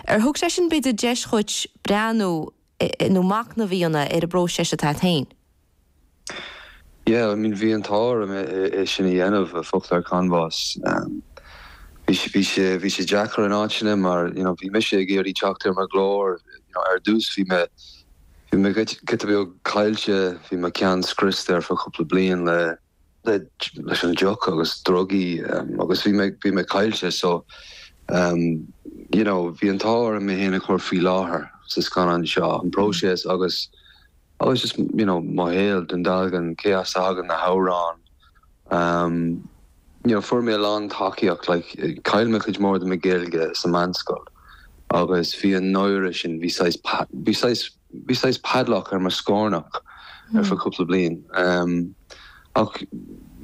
Ar thug sé sin b'fhéidir deis dhuit breathnú nó macnamh a dhéanamh ar an bpróiseas atá a't féin? Yeah, I mean bhí an t-ádh orm é sin a dhéanamh, Focal ar Chanbhás. Bhí sé deacair in áiteanna mar you know bhí mise ag iarraidh teacht ar mo ghlór you know ar dtús bhí mé bhí mé giota beag caillte bhí mo cheann scriosta ar feadh cúpla bliain le leis an deoch agus drugaí agus bhí mé, bhí mé caillte so you know bhí an t-ádh orm mé fhéin a chur i láthair sa scannán seo, an próiseas agus agus just you know mo shaol Dún Dealgan, cé as a thagann na hamhráin you know fuair mé a lán tacaíocht like chaill mé cuid mór de mo Ghaeilge sa meánscoil agus bhí an náire sin, bhí saghas, bhí saghas. Bhí saghas padlock ar mo scórnach ar feadh cúpla bliain. Ach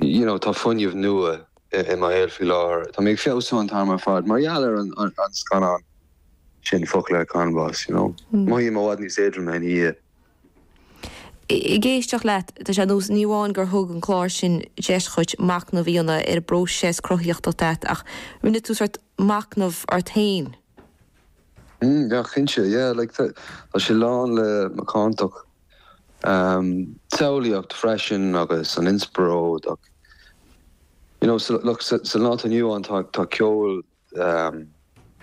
you know tá fuinneamh nua i mo shaol faoi láthair. Tá mé ag feabhsú an t-am ar fad mar gheall ar an scannán sin Focal ar Chanbhás, you know. Mothaím i bhfad níos éadroime ina dhiaidh. Ag éisteacht leat, tá sé nós, ní amháin gur thug an clár sin deis dhuit macnamh a dhéanamh ar an bpróiseas cruthaíochta atá agat ach rinne tú sort macnamh ort féin freisin. Mm yeah cinnte yeah like tá tá sé lán le macántacht an tsamhlaíocht freisin agus an inspioráid ach you know sa lá atá inniu ann tá tá ceol um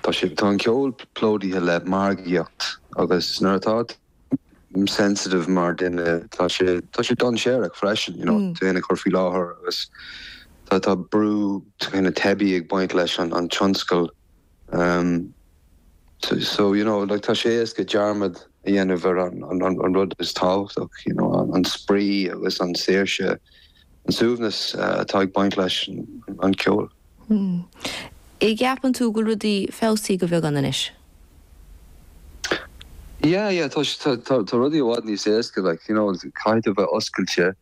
tá sé tá an ceol plódaithe le margaíocht agus nuair atá tú sensitive mar duine tá sé tá sé dainséarach freisin you know tú féin a chur i láthair agus tá tá brú na teipe ag baint leis an an tionscal. Ahm, so, you know, like, tá sé éasca dearmad a dhéanamh ar an rud is tábhachtach, you know, an spraoi agus an saoirse, an suaimhneas atá ag baint leis an ceol. Hmm. An gceapann tú go bhfuil rudaí feabhsaithe de bheagán anois? Yeah, yeah, tá, tá rudaí i bhfad níos éasca, like, you know, caithfidh tú bheith oscailte.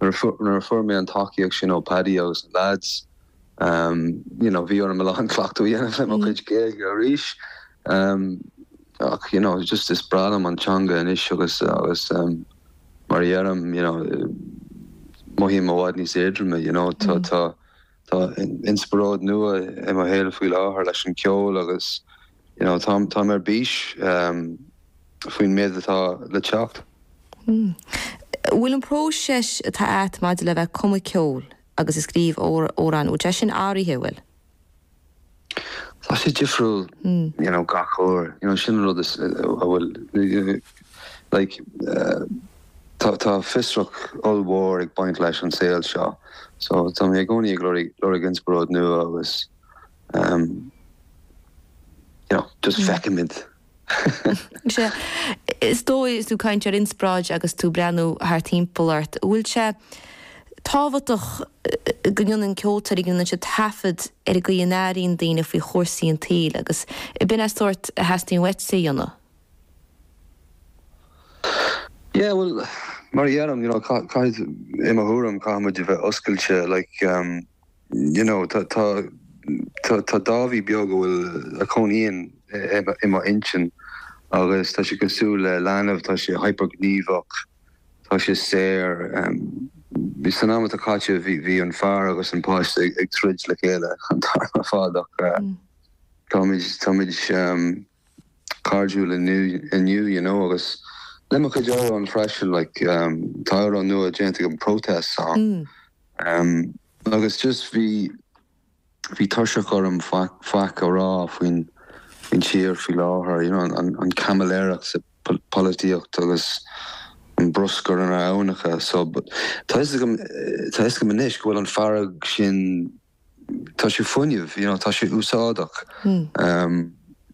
Nuair a fuair mé an tacaíocht sin ó Paddy agus na lads, you know bhí orm a lán cleachtadh a dhéanamh le mo chuid Gaeilge arís ach you know just is breá liom an teanga anois agus agus mar a dheirim you know mothaím i bhfad níos éadroime you know tá tá tá inspioráid nua i mo shaol faoi láthair leis an ceol agus you know tá mé ar bís um, faoin méad atá le teacht. Hmm. Bhfuil an próiseas atá a't maidir le bheith ag cumadh ceol agus a scríobh amhráin, níl téis áirithe a bhfuil. tá sé difriúil you know gach uair you know sin an rud is an bhfuil like tá tá fiosracht ollmhór ag baint leis an saol seo so tá mé i gcónaí ag lorg lorg inspioráid nua agus um, you know just feicimid Sea. Is dóigh, is tú ag caint ar inspráid agus tú ag breathnú thart thimpeall ort, an bhfuil sé tábhachtach go ndéanann ceoltóirí, go ndéanann siad taifead ar an gcaoi a n-airíonn daoine faoi chúrsaí an tsaoil agus ab in an sórt a theastaíonn uaitse a dhéanamh? Yeah, bhuel, mar a dheirim, you know, caithfidh, i mo thuairim, caithfidh muid a bheith oscailte, like, you know tá tá tá tá Dáibhí beag a bhfuil a chónaíonn i mo intinn agus tá sé cosúil le leanbh tá sé hypergníomhach tá sé saor um, bhí san am atá caite bhí bhí an fear agus an páiste ag, ag troid le chéile an t-am ar fad ach uh, mm. táid táimid um, cairdiúil inniu you know agus le mo chuid amhrán freisin like tá amhrán nua déanta agam protest song mm agus just bhí bhí tuirseach orm faic faic a rá faoin faoin tír faoi láthair you know an an caimiléireacht sa pholaitíocht agus an bruscar inár n-aibhneacha so tá fhios agam tá fhios agam anois go bhfuil an fearg sin Tá sé fuinneamh, you know, tá sé úsáideach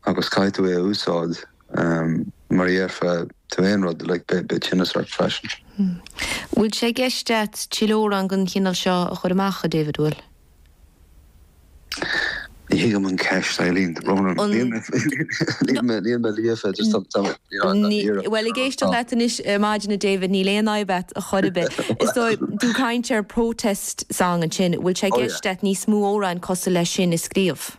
agus caithfidh tú é a úsáid mura ndéarfaidh tú aon rud, like, beidh tinneas ort freisin. Bhfuil sé i gceist agat tuilleadh amhrán den chineál seo a chur amach, a David? Bhfuil? Ní thuigim an ceist, Eileen. Níl mé líofa, just tá mé, Bhuel, ag éisteacht leat anois, ar maidin a David, níl aon fhadhb agat ar chor ar bith. Is dóigh, tú ag caint ar protest song ansin, bhfuil sé i gceist agat níos mó amhráin cosúil leis sin a scríobh?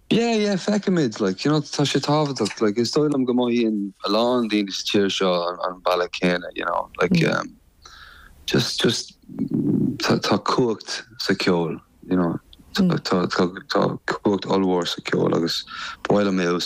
Yeah, yeah, feicimid, like, you know, tá sé tábhachtach, like, is dóigh liom go mothaíonn a lán daoine sa tír seo an bealach céanna, you know, like, um, just, just, tá, tá cumhacht sa cheol, you know, tá, tá, tá cumhacht ollmhór sa cheol agus ba mhaith liom é a úsáid.